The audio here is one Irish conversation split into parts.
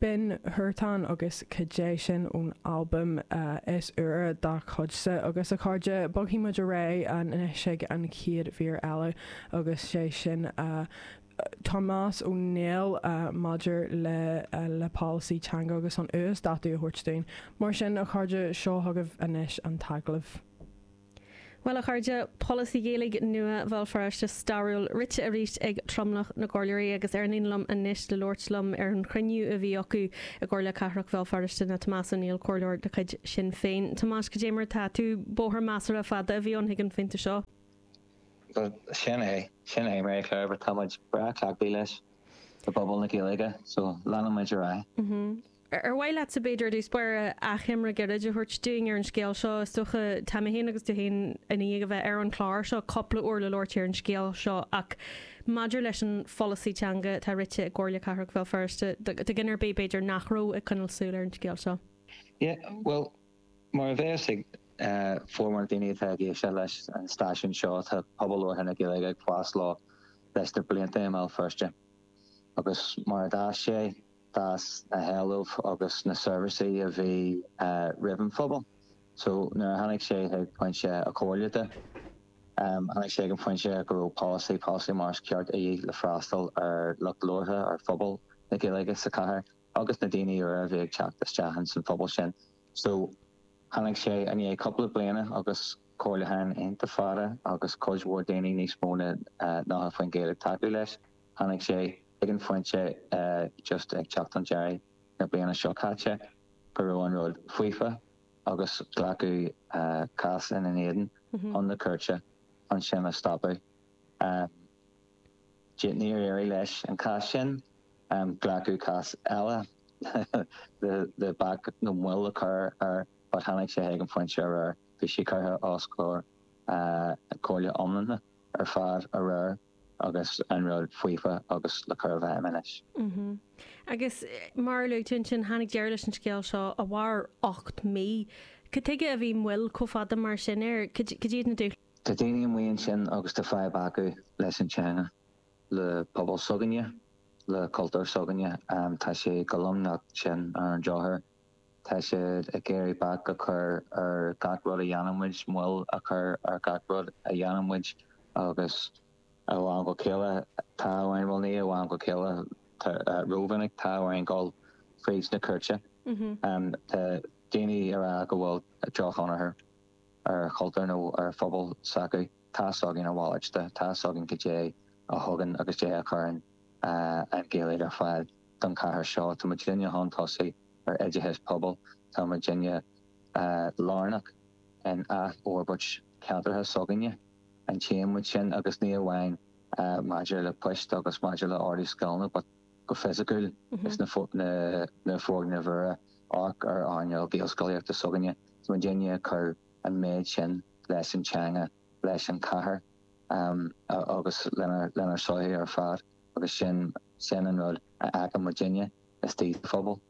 Binn Huartán agus Caidé Sin ón albam is úire dá chuidse agus a chairde. Bogfaidh muid ar aghaidh anois chuig an chéad mhír eile agus is é sin Tomás Ó Néill maidir le le polasaí teanga agus an uasdátú a thabhairt dúinn. Mar sin a chairde, seo chugaibh anois an t-agallamh. Bhuel, a chairde, polasaí Gaeilge nua Bhéal Feirste stairiúil rite arís ag tromlach na gcomhairleoirí agus ar an líne liom anois le labhairt liom ar an chruinniú a bhí acu i gComhairle Cathrach Bhéal Feirste ná Tomás Ó Néill, comhairleoir de chuid Shinn Féin. Tomás, cad é mar atá tú. Bóthar measartha fada a bhí ann chuig an phointe seo. Bhuel, sin é. Sin é, Mary Claire, but táimid breá cleachtaithe leis i bpobal na Gaeilge, so leanfaimid ar aghaidh. Ar mhaith leatsa, b'fhéidir, i dtús báire, achoimre gairid a thabhairt dúinn ar an scéal seo? Is dócha, tá mé féin agus tú féin i ndiaidh a bheith ar an chlár seo cúpla uair le labhairt ar an scéal seo ach maidir leis an pholasaí teanga atá rite i gComhairle Cathrach Bhéal Feirste, do dhuine ar bith, b'fhéidir, nach raibh ag coinneáil súil ar an scéal seo. Yeah, bhuel, mar a bheas a fhios ag formhór na daoine atá ag éisteacht leis an stáisiún seo, tá pobal labhartha na Gaeilge ag fás leis leis na blianta i mBéal Feirste agus mar a d'fhás sé, d'fhás na héilimh agus na seirbhísí a bhí uaidh an phobal. So nuair a tháinig sé chuig pointe an chomhairle de, tháinig sé chuig an phointe go raibh polasaí, polasaí mar is ceart de dhíth le freastal ar lucht labhartha, ar phobal na Gaeilge sa chathair agus na daoine úra a bhí ag teacht isteach ins an phobal sin. So tháinig sé i ndiaidh cúpla bliana agus comhairliúchán iontach fada agus cuid mhór daoine níos mó na nócha faoin gcéad ag tacú leis, tháinig sé chuig an phointe just ag teacht ar dheireadh na bliana seo caite go raibh an rud faofa agus glacadh cás ina éadan chun na cúirte chun sin a stopadh. Níor éirigh leis an cás sin. Glacadh cás eile le bac nó moill a chur air but tháinig sé chuig an phointe aréir bhí sé curtha os comhair an Chomhairle iomlán ar fad aréir. Agus an rud faofa agus le cur i bhfeidhm anois. Mm-hmm. Agus mar a luaigh tú ansin, tháinig deireadh leis an scéal seo a mhair ocht mí. Cad tuige a bhí moill chomh fada mar sin air? Cad iad na dúshláin? Tá daoine amuigh ansin agus tá fadhb acu leis an teanga, le pobal s'againne, le cultúr s'againne. Tá sé chomh lomnocht sin ar an drochuair. Tá siad ag iarraidh bac a chur ar gach rud a dhéanann muid, moill a chur ar gach rud a dhéanann muid agus ó am go chéile tá orainn, bhuel ní hé ó am go chéile, rómhinic tá orainn dul fríd na cúirteanna. Tá daoine ag rá go bhfuil drochthionchar ar chultúr nó ar phobal s'acu. Tá's againn a mhalairt de. Tá's againn goidé a thugann agus 'dhé a chuireann an Ghaeilge ar fáil don chathair seo. Tá muidinne chun tosaigh ar oideachas pobail. Tá muidinne lárnach in athfhorbairt ceantracha s'againne. Aithníonn muid sin agus ní amháin maidir le poist agus maidir le ardú scileanna but go fisicúil is na foirgnimh úra ag earnáil Gaelscolaíochta s'againne. Tá muidinne ag cur an méid sin leis an teanga, leis an chathair agus lenár sochaí ar fad agus sin sin an rud a chonaic muidinne istigh sa phobal.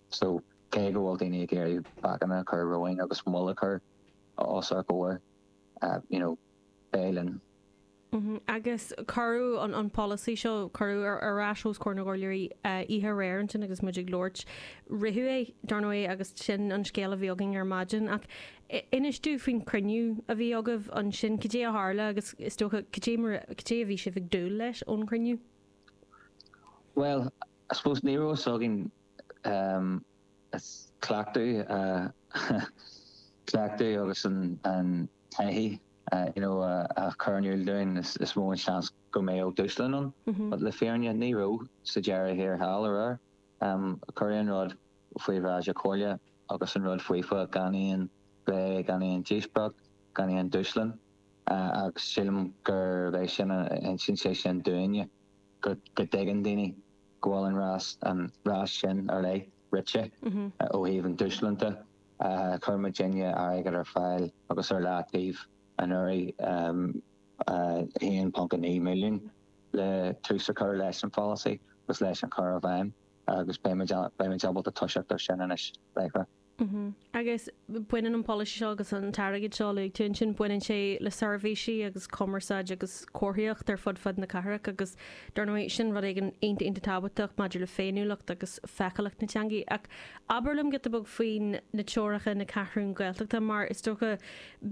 So cé go bhfuil daoine ag iarraidh bacanna a chur romhainn agus moill a chur os ár gcomhair, you know, beidh linn. Agus cuireadh an polasaí seo, cuireadh ar ais os comhair na gComhairleoirí oíche aréir ansin agus muid ag labhairt. Ritheadh é, dar ndóigh, agus sin an scéal a bhí againn ar maidin. Ach inis domh faoin chruinniú a bhí agaibh ansin. Cad é a tharla agus, is dócha, cad é mar, cad é a bhí sibh ag dúil leis ón chruinniú? Bhuel, I suppose ní raibh a fhios againn cleachtadh, cleachtadh agus an, taithí you know ag cur in iúl dúinn is mó an seans go mbeadh dúshlan ann but le fírinne ní raibh sa deireadh thiar thall aréir. Cuireadh an rud faoi bhráid na Comhairle agus an rud faofa gan aon phlé gan aon díospóireacht gan aon dúshlan agus sílim gurb é sin a insíonn sé sin dúinne go dtuigeann daoine go bhfuil an rás sin uilig rite ó thaobh an dúshláin de. Chuir muidinne airgead ar fáil agus ar leataobh anuraidh, 1.9 milliún, le tús a chur leis an pholasaí agus leis an chur i bhfeidhm agus beidh muid ábalta toiseacht ar sin anois láithreach. Agus baineann an polasaí seo agus an t-airgead seo a luaigh tú ansin, baineann sé le seirbhísí agus cumarsáid agus comharthaíocht ar fud fad na cathrach agus dar ndóigh sin rud éigin iontach iontach tábhachtach maidir le féiniúlacht agus feiceálacht na teangaidh. Ach abair liom giota beag faoi na teorainneacha na Ceathrún Gaeltachta mar is dócha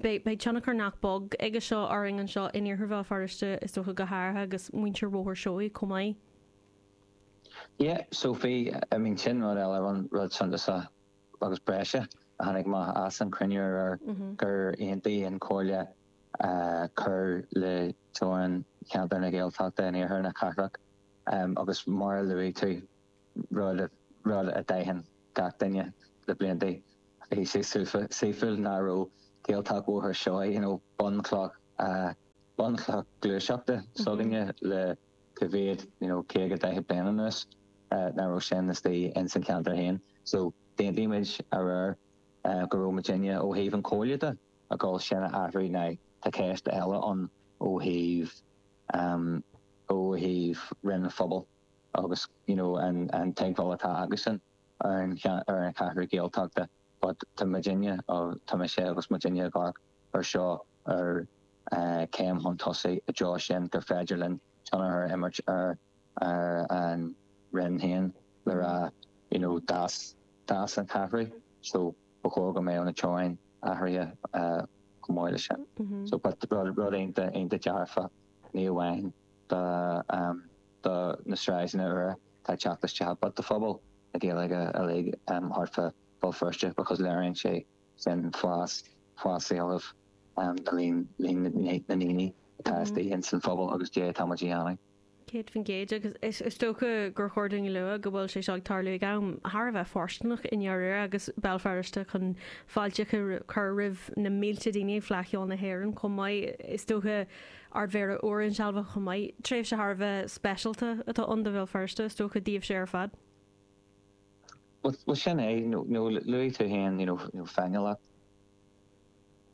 beidh beidh tionchar nach beag aige seo orainn anseo in Iarthar Bhéal Feirste is dócha go háirithe agus muintir Bhóthar Seoighe chomh maith. Yeah, so, I mean sin rud eile an rud suntasach agus breise a tháinig amach as an chruinniú aréir gur aontaigh an Chomhairle cur le teorainn cheantar na Gaeltachta in iarthar na cathrach agus mar a luaigh tú, rud a d'aithin gach duine le blianta, bhí sé seafóideach nach raibh Gaeltacht Bhóthar Seoighe, you know, bunchloch gluaiseachta s'againne le. coimhéad you know caoga daichead bliain anuas ná raibh sin istoigh ins an cheantar féin so d'aontaigh muid aréir go raibh muidinne ó thaobh an Chomhairle de ag dul sin a athrú now tá ceist eile ann ó thaobh ehm ó thaobh Roinn an Phobail agus you know an an teagmháil atá acusan ar an ar an Cheathrú Ghaeltachta but tá muidinne tá mise agus muidinne i gcomhair ar seo mar chéim chun tosaigh i dtreo sin gur féidir linn tionchar a imirt ar ar an Roinn féin le rá you know d'fhás d'fhás an t-athrú so ba chóir go mbeadh na teorainneacha athraithe chomh maith le sin so but rud rud iontach iontach dearfach ní amháin do do na sráideanna úra tá teacht isteach but do phobal na Gaeilge uilig thart fá Bhéal Feirste because léiríonn sé sin fás, fás éilimh le linn, líon na ndaoine atá istigh ins an phobal agus caidé atá muid a dhéanamh. 100% agus is is dócha gur chóir dúinn a lua go bhfuil sé seo ag tarlú ag am thar a bheith fóirsteanach i ndáiríre agus Béal Feirste chun fáilte a chur roimh na mílte daoine ag Fleadh Cheoil na hÉireann chomh maith. Is dócha Ardmhéara úr insealbhaithe chomh maith. Tréimhse thar a bheith speisialta atá ann do Bhéal Feirste, is dócha, daoibhse ar fad. Bhuel sin é, nó luaigh tú féin you know féiniúlacht.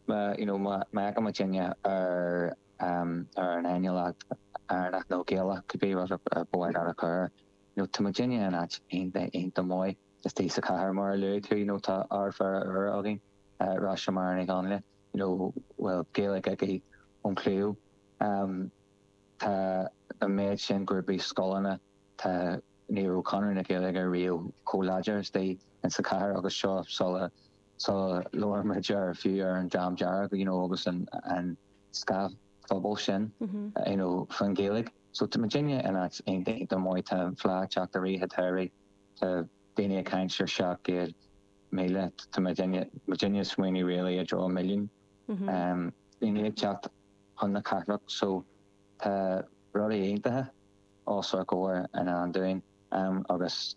Má you know má amharcann muidinne ar ar an fhéiniúlacht Éireannach nó Gaelach cibé rud ab mhaith leat a chur air, you know tá muidinne in áit iontach iontach maith istigh sa chathair mar a luaigh tú you know tá Ardmhéara úr againn, Róis-Máire Ní Dhonnghaile you know a bhfuil Gaeilge aici ón chliabhán. Tá an méid sin grúpaí, scoileanna, Tá, ní raibh Conradh na Gaeilge riamh chomh láidir istigh ins a' chathair agus seo sula, sula labhraíonn muid ar, fiú ar an Dream Dearg, you know, agus an, an scáth phobail sin, you know, faoin Ghaeilge. So tá muidinne in áit iontach maith, tá an Fhleadh ag teacht arís atá arís, tá daoine ag caint ar 700,000, tá muidinne, muidinne ag smaoineamh really i dtreo an milliún. Daoine ag teacht chun na cathrach so tá rudaí iontacha. os ár gcomhair i ndán dúinn agus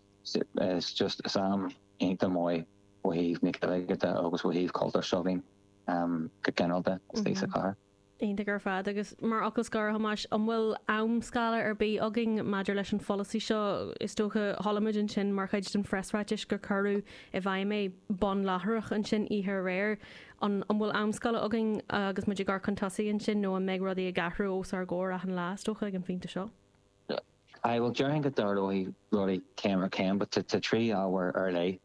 is just is am iontach maith ó thaobh na Gaeilge de agus ó thaobh cultúr seo againn go ginearalta istigh sa chathair. Iontach ar fad. Agus mar fhocal scoir, a Thomáis, an bhfuil amscála ar bith againn maidir leis an pholasaí seo? Is dócha, chualamid ansin mar chuid den phreasráiteas gur cuireadh i bhfeidhm é, bun láithreach ansin oíche aréir. An bhfuil amscála againn agus muid ag amharc chun tosaigh ansin nó an mbeidh rudaí ag athrú os ár gcomhair achan lá, is dócha, ag an phointe seo? Aye, bhuel, déarfainn go dtarlóidh rudaí céim ar chéim but tá trí ábhar ar leith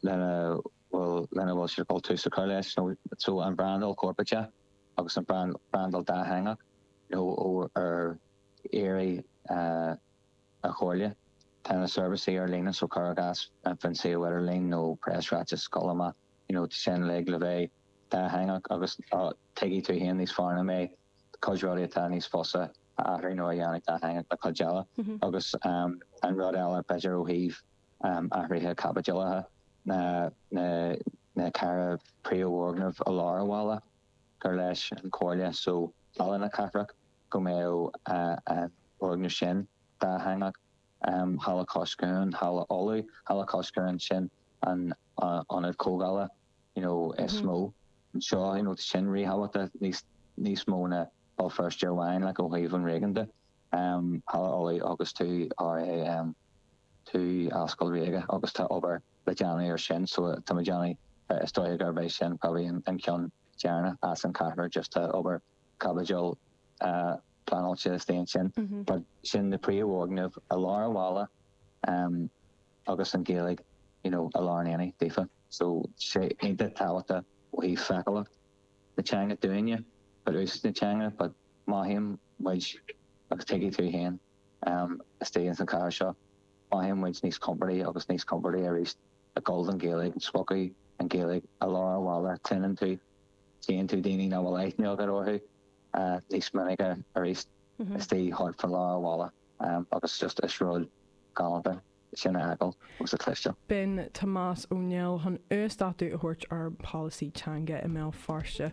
lena bhfuil, lena bhfuil sé de dhul tús a chur leis nó so an bhrandáil chorparáideach agus an bhrandáil dátheangach nó ó ar éide na comhairle tá na seirbhísí ar líne so cuir i gcás an foinse idirlín nó preasráiteas, scaoil amach. you know sin uilig le bheith dátheangach agus tuigfidh tú fhéin níos fearr ná mé cuid rudaí atá níos fusa a athrú nó a dhéanamh dátheangach ná cuid eile agus an rud eile b'fhéidir ó thaobh athraithe caipitil ná na ceithre príomhfhoirgneamh i lár an bhaile gur leis an chomhairle so Halla na Cathrach go mbeadh an foirgneamh sin dátheangach. Halla Cois Cuain, Halla Uladh, Halla Cois Cuain, sin an ionad comhdhála you know is mó anseo you know tá sin ríthábhachtach níos níos mó ná Béal Feirste amháin like ó thaobh an réigiúin de. Halla Uladh agus 2RA 2 Ascaill Ríoga agus tá obair le déanamh ar sin so tá muid déanamh is dóigh gurb é sin probably an ceann deireanach as an ceathrar just tá obair caipitil pleanáilte istigh ansin. But sin na príomhfhoirgnimh i lár an bhaile agus an Ghaeilge you know i lár an aonaigh daofa. So tá sé iontach tábhachtach ó thaobh feiceálacht na teanga dúinne but úsáid na teanga but mothaíonn muid agus tuigfidh tú féin istigh ins an chathair seo mothaíonn muid níos compordaí agus níos compordaí aríst ag gabháil don Ghaeilge, spotáil an Ghaeilge i lár an bhaile cluineann tú cluineann tú daoine nach bhfuil aithne agat orthu níos minice aríst istigh thart fá lár an bhaile agus just is rud galánta sin a fheiceáil agus a chloisteáil. B'in Tomás Ó Néill chun uasdátú a thabhairt ar pholasaí teanga i mBéal Feirste.